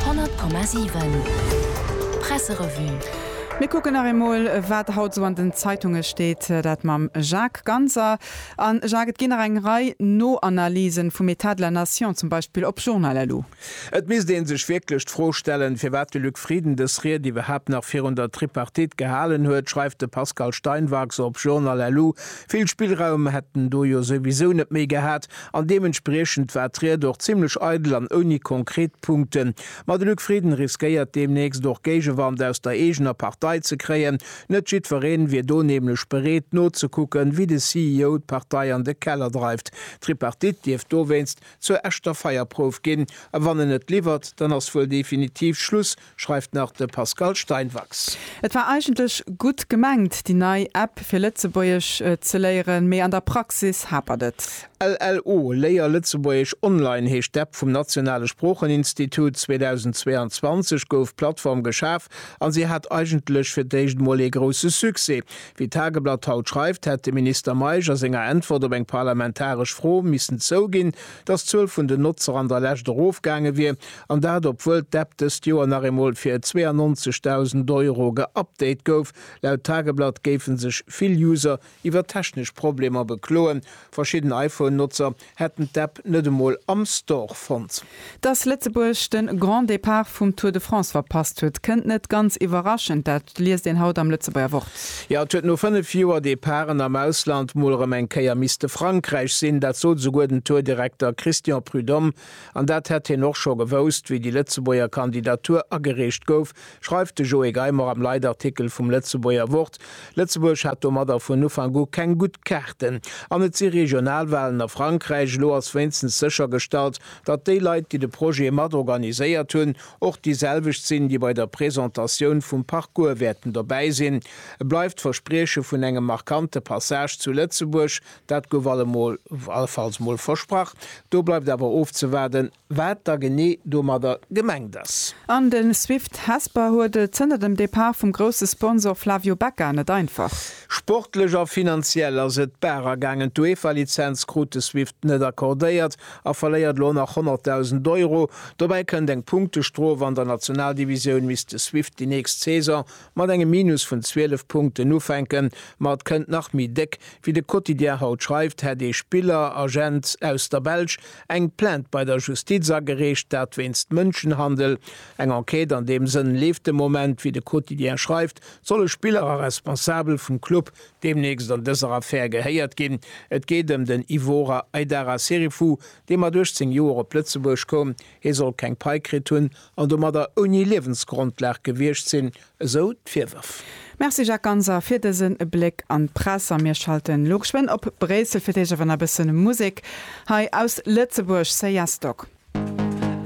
100,7 Presserevue. Mir kucken nach eemol, wat haut esou an den Zeitunge steet, dat mam Jacques Ganser. A Jacques, et ginn nach eng Rei No-Analysen vum État de la Nation, zum Beispill op Journal LU. Et misst ee sech wierklech d'Fro stellen, firwat de Luc Frieden dës Ried iwwerhaapt nach virun der Tripartite gehalen huet, schreift de Pascal Steinwachs op Journal LU. Vill Spillraum hätt en do jo souwisou net méi gehat, An deementspriechend war d'Ried och zimmlech eidel an ouni konkret Punkten. Ma de Luc Frieden riskéiert deemnächst och Géigewand aus der eegener Partei ze kréien. Net jiddwereen wier do nämlech bereet nozekucken, wéi de CEO d'Partei an de Keller dreift. D'Tripartite dierft dowéinst zur echter Feierprouf ginn. A wann en et liwwert, dann ass wuel definitiv Schluss, schreift nach de Pascal Steinwachs. Et war eigentlech gutt gemengt, déi nei App fir Lëtzebuergesch ze léieren, mee an der Praxis hapert et. LLO, Léier Lëtzebuergesch online heescht d'App vum Nationale Sproocheninstitut. 2022 gouf d'Plattform geschaf a si hat eigentlech fir d'éischt emol ee grousse Succès. Wéi d'Tageblatt haut schreift, hätt de Minister Meisch a senger Äntwert op eng parlamentaresch Fro missen zouginn, datt d'Zuel vun den Notzer an der Lescht erofgaange wier, An dat obwuel d'App dëst Joer nach eemol fir 92.000 Euro geupdate gouf. Laut Tageblatt géife sech vill User iwwer technesch Problemer bekloen. Verschidden iPhone-Notzer hätten d'App net emol am Store fonnt. Datt Lëtzebuerg de Grand Départ vum Tour de France verpasst huet, kënnt net ganz iwwerraschend. Dat liest een haut am Lëtzebuerger Wort. Jo, et huet no 5 Joer Departen am Ausland mol erëm eng Kéier misste Frankräich sinn. Dat sot esouguer den Tour-Direkter Christian Prudhomme An dat hätt hien och scho gewousst, wéi déi Lëtzebuerger Kandidatur agereecht gouf, schreift de Joé Geimer am Leitartikel vum Lëtzebuerger Wort. Lëtzebuerg hat domadder vun Ufank u keng gutt Kaarten. An et si Regionalwahlen a Frankräich. Elo ass wéinstens séchergestallt, datt déi Leit, déi de Projet mat organiséiert hunn, och déi selwecht sinn, déi bei der Presentatioun vum Parcours wäerten dobäi sinn. Et bleift d'Versprieche vun engem markante Passage zu Lëtzebuerg, Dat gouf allemol, allenfalls mol, versprach. Do bleift awer ofzewaarden, wat da genee domadder gemengt ass. An de Swift Hesper huet et zënter dem Depart vum grousse Sponsor Flavio Becca net einfach. Sportlech a finanziell ass et d'Barer gaangen. D'UEFA-Lizenz krut de Swift net accordéiert a verléiert elo nach 100.000 Euro. Dobäi kënnt eng Punktestrof. An der Nationaldivisioun misst de Swift déi nächst Saison mat engem Minus vun 12 Punkten ufänken, ma et kënnt nach méi déck. Wéi de Quotidien haut schreift, hätt ee Spiller, Agent aus der Belsch eng Plainte bei der Justiz agereecht, dat wéinst Mënschenhandel. Eng Enquête an deem Sënn leeft de Moment. Wéi de Quotidien schreift, solle Spiller a Responsabel vum Club deemnächst an dëser Affär gehéiert ginn. Et geet ëm den Ivora Aidara Serifu, dee mat 18 Joer op Lëtzebuerg koum, Hie soll keng Pai kritt hunn an domadder ouni Liewensgrondlag gewiescht sinn, esou d'Virwërf. Merci Jacques Ganser fir dësen Bléck an d'Press a mir schalten elo geschwënn op Bréissel fir d'Éischt awer nach e bëssen Musek hei aus Lëtzebuerg, Seyasdog.